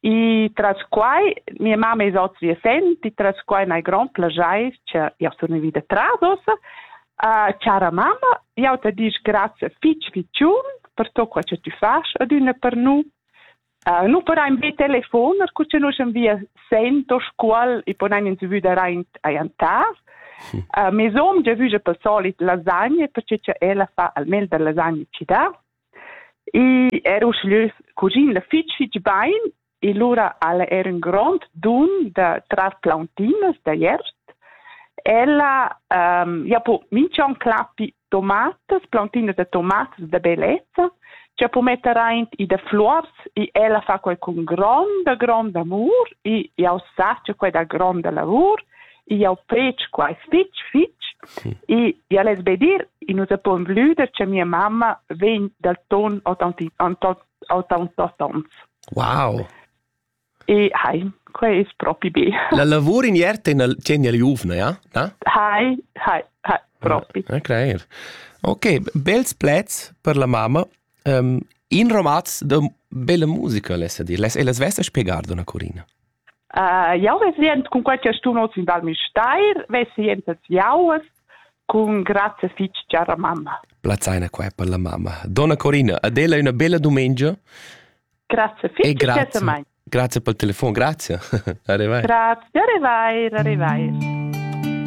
E tras quai, mia mamma e ils auters viesenti, tras quai hai grond plaschair che jau sun vita tras ossa, uh, chara mamma, jau te dic grazie fitch ficiun per tot quel che tu fas adüna per nu. Uh, nu paraim be telefon, er cu che nus am via sento scuol e ponaim in vüda raint aiantas. Uh, mes hom già vüja per solit lasagne perché che ella fa almeno da lasagne ci dà. I era uschè cuschina fitg fitg bain e lura al era in grond dun da trar plauntinas da jerst. Ella um, ja po minch'on clappi tomatas, plauntinas da tomatas da bellezza, cha po metter aint i da fluors e ella fa quai cun gronda, gronda amur e jau sa cha quai dà gronda lavur jau fetsch quai fitg, fitg. Hm. E ja less be dir, i nus appon vlüder che mia mamma vegn dal ton 80-ans. Wow! E hai, quai es propi be. La lavur in iert tegna il giuvna, ja? Na? Hai, hai, hai, propi. Ah, okay. Ok, bels plets per la mamma Um, in romaz de bella musica lessa dir, les e les vesta spiegar dona Corina. Uh, jau resent cun quai che stun oz in Val Misteir, vesient els jaues cun grazie fitch chara mamma. Plazzaina qua per la mamma. Donna Corina, adela una bella domenica. Grazie fitch e grazie. Grazie per il telefono, grazie. arrivai. Grazie, arrivai, arrivai.